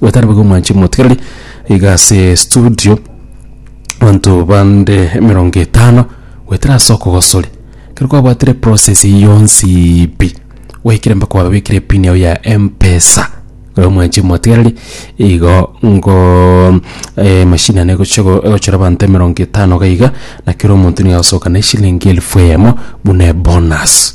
Gotari boigo mwanche motigereri iga ase studio abanto bande emerongo etano goetera ase okogosori ekero kwabwatire process eyio yonsi pi gwaikire mpaka kwababekire epini yago ya mpesa igo mwanche motigereri igo ngoo emachine ane egocha go egochora abanto emerongo etano iga iga na kera omonto nigo agosoka na eshilingi elfu eyemo buna ebonus.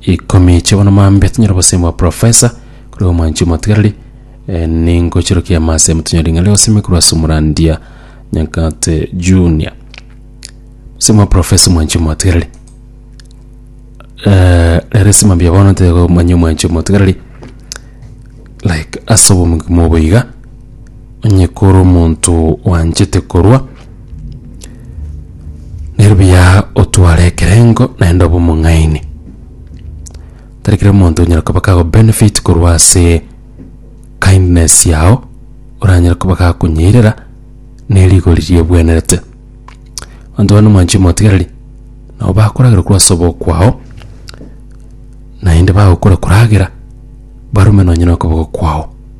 Ikomi chia bono mambia tinyore gosemi bwa profesa korwa omwanchi omotigareri eh, ningochirokia amase motonyore ring'ana ria gosemi korwa ase omorandia Nyankate Junior semi bwa profesa omwanchi omotigareri eh, rero ase mambia bono ntegomanya omwanchi omotigareri like ase obogima obo iga onye kore omonto oanchete korwa, nero buya otware ekerengo naende obe omong'aini. Tari kera omonto onyara koba kagobenefit korwa ase kindness yao, oranyare koba gakonyeirera ne rigori riegwenerete. Abanto bande omwanche omotigereri, nabo bakoragera korwa ase oboyo kwao, naende bagokora koragera, barume nonye na okoboko kwao.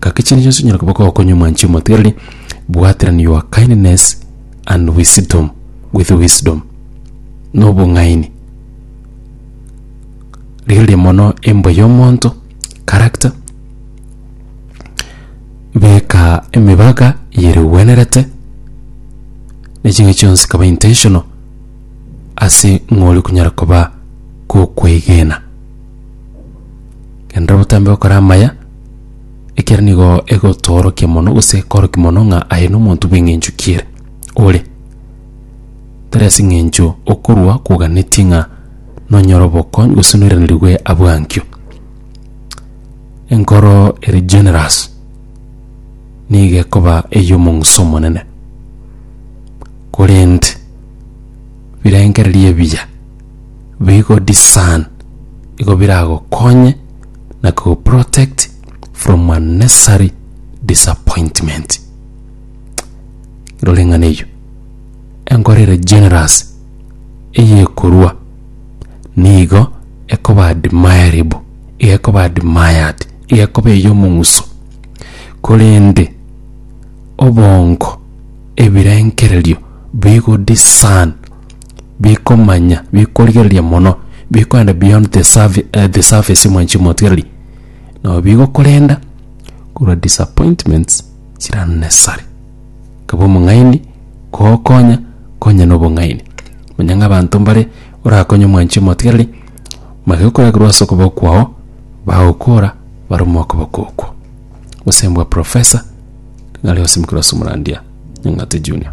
Gaki chinde chionsi onyare koba gokonywa mwanche omotigereri, bwaterani your kindness and wisdom with wisdom, na obong'aini. Rigereria mono embwa y'omonto, character, beka emebaga yeregwenerete, na ching'aki chionsi kaba intentional ase ng'ori konyara koba gokweigena. Genda botambe gokora amaya. Ekiagera nigo egotoorokia mono gose ekorokia mono ng'a aye nomonto bw'eng'encho ki'ere ore. Tari ase eng'encho okorua kwoganetie ng'a nonyore obokonyi gose noiranerirwe abwo ankio. Enkoro ere generous nigo ekoba ey'omong'uso omonene. Korende birengererio ebiya. bigodiscern igo biragokonye na kuguprotect from unnecessary disappointment. Rora eng'ana eyio. Enkoro ere generous eyekorua nigo ekoba admirable, iga ekoba admired, iga ekoba ey'omong'uso. Korende obongo, ebirengererio bigodiscern bikomanya bikorigereria mono bikoenda beyond the, surf- eh, the surface mwa chimotigereri nabo bigokorenda korwa disappointments chiranesare kaba omong'aini kogokonya konya na obong'aini manya ng'a abanto mbare orakonye omwanchi omotigereri magekoragerwa ase okoboko kwao bagokora barome okoboko okwo gosembwa profesa ng'are osimokera ase omorandia nyang'ate junior